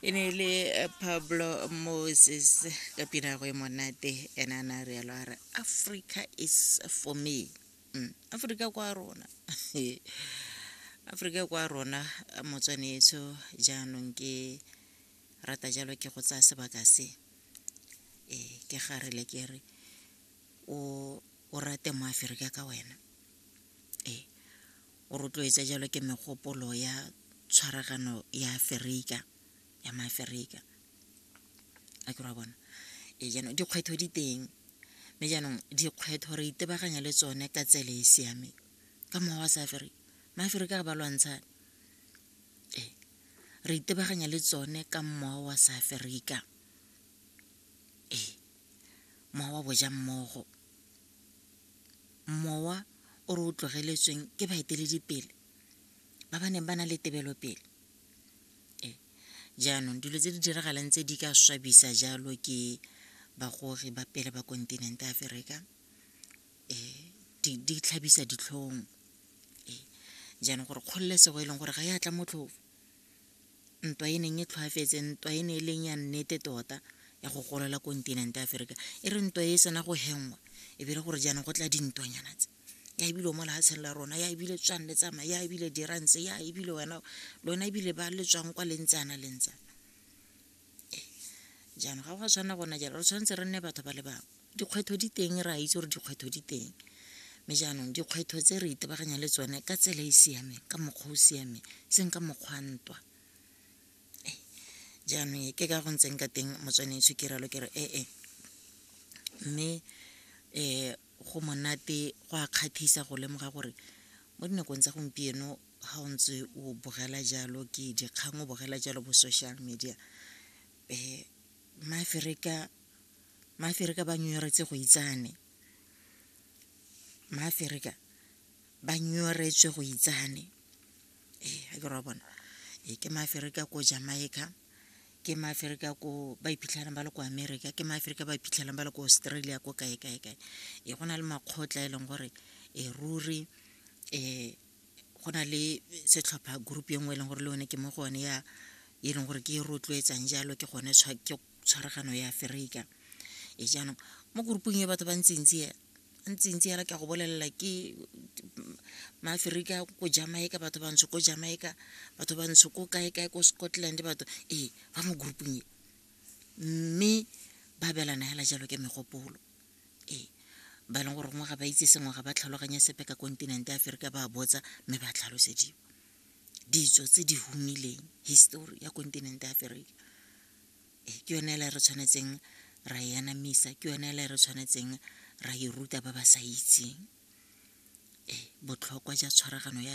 e ne e le eh, pablo moses ka pina go e monate ene a na re yalo a re africa is for me mm. africa kwa rona africa kwa rona motswanetso jaanong ke rata jalo ke go tsaya sebaka se e ke gare le ke re o rate mo aferika ka wena o rotloetsa jalo ke megopolo ya tshwaragano ya aferika ya maaferika a ke ra bona e jaanong dikgwetlho di teng mme jaanong dikgwetlho re itebaganya le tsone ka tsele e siameng ka mokgwa wa sa aferika maaferika ga ba lwantsha e re itebaganya le tsone ka mmoa wa sa aferika ee mowa wa boja mmogo mowa o re o tlogeletsweng ke baeteledipele ba ba neng ba na le tebelopele ee jaanong dilo tse di diragalang tse di ka swabisa jalo ke bagogi ba pele ba kontinente aferika ee di tlhabisa ditlhong ee jaanong gore kgololesego e leng gore ga e atla motlhofo ntwa e neng e tlhwaafetse ntwa e ne e leng ya nnete tota ya go golola kontinente ya aferika e re ntwa e sena go hengwa e bile gore jaanong go tla dintwanyana tse ya ebile o mo lehatsheng la rona ya ebile tswang le tsamaya ya ebile dirantse ya ebile wena lona ebile ba le tswang kwa lentsana lentsana jaanong ga go a tshwana gona jalo re tshwanetse re nne batho ba le bangwe dikgwetlho di teng re a itse gore dikgwetlho di teng mme jaanong dikgwetlho tse re itebaganya le tsone ka tsela e e siameng ka mokgwa o siameng seng ka mokgwa ntwa jaanong ke ka go ntseng ka teng motswanetso ke ralo ke re ee mme um go monate go a kgathisa go lemoga gore mo dinakong tsa gompieno ga o ntse o bogela jalo ke dikgang o bogela jalo bo social media um maaferika maaferika ba nyoretse go itsane maaferika ba nyoretswe go itsane ee ga ke ra bona ee ke maaferika ko jamaica ke maaferika ko ba iphitlhelang ba le ko america ke maaferika ba iphitlhelang ba le ko australia ko kae kae kae ee go na le makgotla e leng gore e ruri um go na le setlhopha group e nngwe e leng gore le one ke mo go one ya e leng gore ke e rotloetsang jalo ke gone ke tshwaragano ya aferika e jaanong mo groupong e batho ba ntsintsi ya ntsintsi yala ke go bolelela ke maaferika ko jamaica batho bantsho ko jamaica batho bantsho ko kae kae ko scotland batho ee ba mo groupong e mme ba belana hela jalo ke megopolo ee ba e leng gore gongwe ga ba itse sengwe ga ba tlhaloganye sepe ka kontinente ya aferika ba botsa mme ba tlhalosediwa ditso tse di humileng histori ya kontinente ya aferika ee ke yone ele re tshwanetseng ra e anamisa ke yone ele re tshwanetseng ra e ruta ba ba sa itseng ee botlhokwa ja tshwaragano ya